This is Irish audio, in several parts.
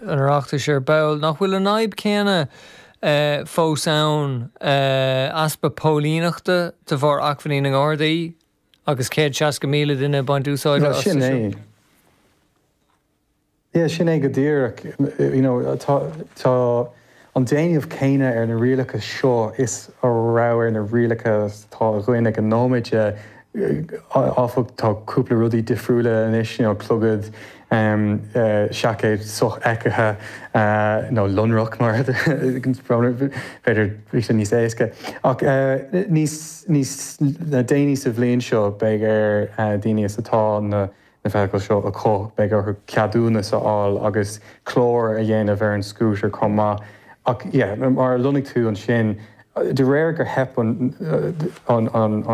an Oireachtais ar ball. Nach bhfuil an fhadhb chéanna fós ann, easpa póilíneachta de bharr acmhainní na nGardaí agus 160,000 duine ag baint úsáide astu sin? Bhuel, sin é. Sin é go díreach. An déanamh céanna ar na rialacha seo is a raibh ar na rialacha atá againn ag an nóiméad, áfach, tá cúpla rudaí difriúla anois, you know, clogad, seaicéad sofheicthe, nó lonrach mar b'fhéidir níos níos éasca. Ach níos déanaí sa bhliain seo beidh ar daoine atá na. na feithicle seo acu, beidh orthu ceadúnas a fháil agus clár a dhéanamh ar an scútar chomh maith. Ach mar a lonnaigh tú ansin, de réir gur theip ar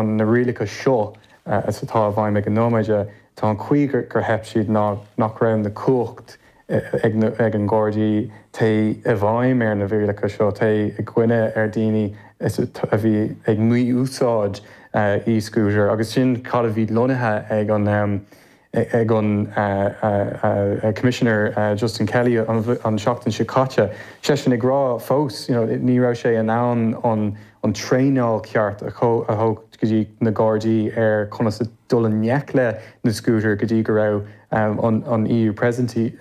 na rialacha seo atá i bhfeidhm ag an nóiméad, tá an chaoi gur theip siad ná nach raibh na cumhacht ag an nGardaí, téigh i bhfeidhm ar na rialacha seo, téigh i gcoinne ar dhaoine a bhí ag mí-úsáid e-scooter agus sin cad a bhí lonnaithe ag an ag an Commissioner Justin Kelly an tseachtain seo caite, seisean ag rá fós you know ní raibh sé in ann an an traenáil ceart a a thabhairt go dtí na Gardaí ar conas a dul i ngleic le na Scútair go dtí go raibh an EU Presidency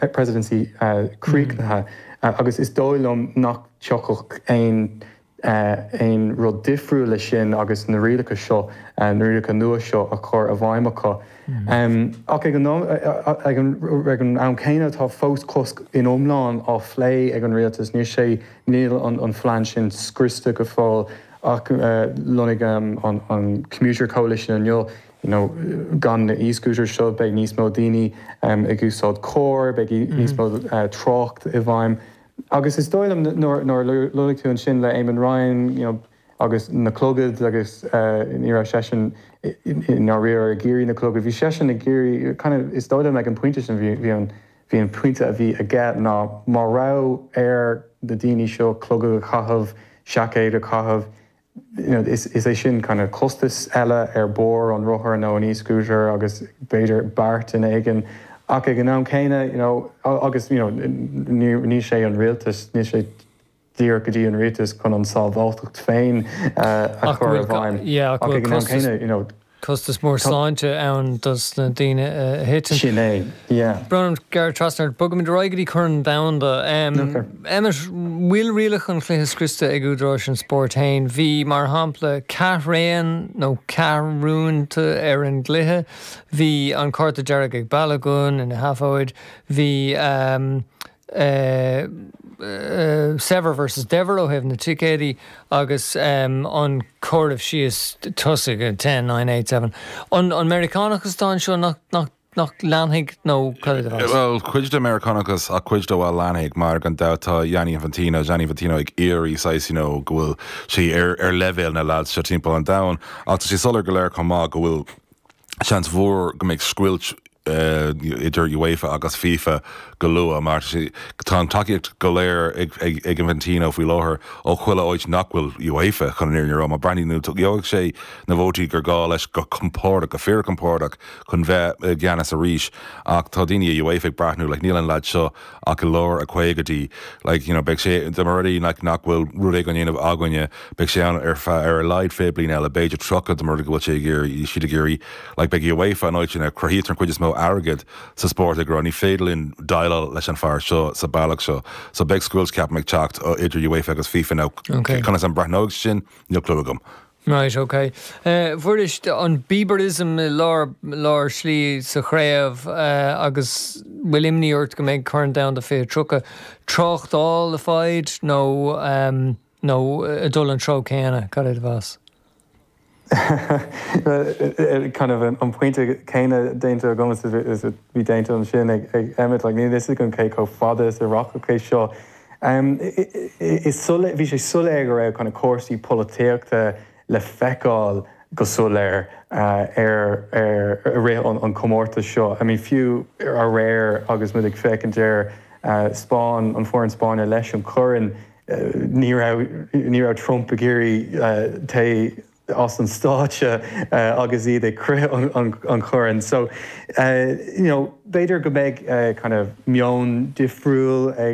críochnaithe agus is dóigh liom nach dtiocfadh aon rud difriúil leis sin agus na rialacha seo, na rialacha nua seo a chur i bhfeidhm acu. Ach ag an am céanna tá fós cosc ina iomlán á phlé ag an rialtas. Níl sé, níl an phlean sin scriosta go fóill. Ach lonnaigh an Commuter Coalition inniu, you know gan na e-scooters seo beidh níos mó daoine ag úsáid carr, beidh níos mó trácht i bhfeidhm agus is dóigh liom nuair a lonnaigh tú ansin le Eamon Ryan you know agus na clogad agus ní raibh seisean i ndáiríre ag iarraidh na clogad, bhí seisean ag iarraidh kind of is dóigh liom ag an pointe sin bhí an Bhí an pointe a bhí aige ná má raibh ar na daoine seo clogad a chaitheamh, seaicéid a chaitheamh, is é sin kind of costas eile ar barr an rothair nó an e-scooter agus b'fhéidir barr duine éigin ach ag an am céanna you know agus you know níl sé an rialtas, níl sé. díreach go dtí an rialtas chun an sábháilteacht féin a chur i bhfeidhm. Ach ag an am céanna, you know. costas mór sláinte ann dos na daoine a thiteann. Sin é, yeah. Brón gearradh trasna ort. Bogfaimid ar aghaidh go dtí Corn Domhanda. Emmet, bhfuil rialacha an chluiche scriosta ag údaráis an spóirt féin? Bhí, mar shampla, ceathraon nó ceathrúnta ar an gcluiche. Bhí an cárta dearg ag Balogun ina sheafóid. Bhí saibhir versus daibhir ó thaobh na ticéad agus an comhaireamh síos tosaithe, ten, nine, eight, seven. An Meiriceánachas atá anseo nach leanfaidh nó cad é do mheas? Bhuel, cuid den Meiriceánachas ach cuid de, bhuel, leanfaidh mar gan dabht tá Gianni Infantino, Gianni Infantino ag iarraidh saghas, you know, go bhfuil sé ar leibhéal na leaids seo timpeall an domhain ach tá sé soiléir go léir chomh maith go bhfuil, Seans mhór go mbeidh scoilt idir UEFA agus fifa go luath mar tá an tacaíocht go léir ag Infantino faoi láthair ó chuile áit nach bhfuil UEFA, chun an fhírinne a rá. Má breathnaíonn tú, gheobhaidh sé na vótaí gur gá leis, go compordach, go fíorchompordach, chun bheith i gceannas arís ach tá daoine i UEFA ag breathnú, like níl an leaid seo, ach i lár a caogaidí like you know beidh sé dá mba rud é like nach bhfuil rud éigin á dhéanamh againne beidh sé ann ar feadh ar a laghad fiche bliain eile b'fhéidir tríocha dá mba rud go bhfuil sé ag iarraidh siad ag iarraidh like beidh uefa an áit sin a cruthaítear an chuid is mó airgead sa spórt ag rá ní féidir linn déileáil leis an fear seo sa bealach seo so beidh scoilt ceapaim ag teacht ó idir uefa agus fifa now okay conas a breathnóidh sin níl clue agam Right, ok. Fuair muid an Bieberism i lár, lár slí sa chraobh agus bhfuil imní ort go mbeidh Corn Domhanda 2030 tráchtála le fáil nó, nó ag dul an treo céanna? Cad é do mheas? Bhuel, kind of an pointe céanna déanta agam is a bhí déanta ansin ag Emmet, like níl 'fhios agam cé chomh fada is a rachadh é seo. Bhí sé soiléir go raibh cúrsaí polaitíochta le feiceáil go soiléir i rith an chomórtais seo. Fiú aréir agus muid ag féachaint ar Spáinn, an foireann Spáinne leis an Chorn, ní raibh Trump ag iarraidh téigh as an stáitse agus iad ag croith an Choirn. So b'fhéidir go mbeidh meon difriúil ag.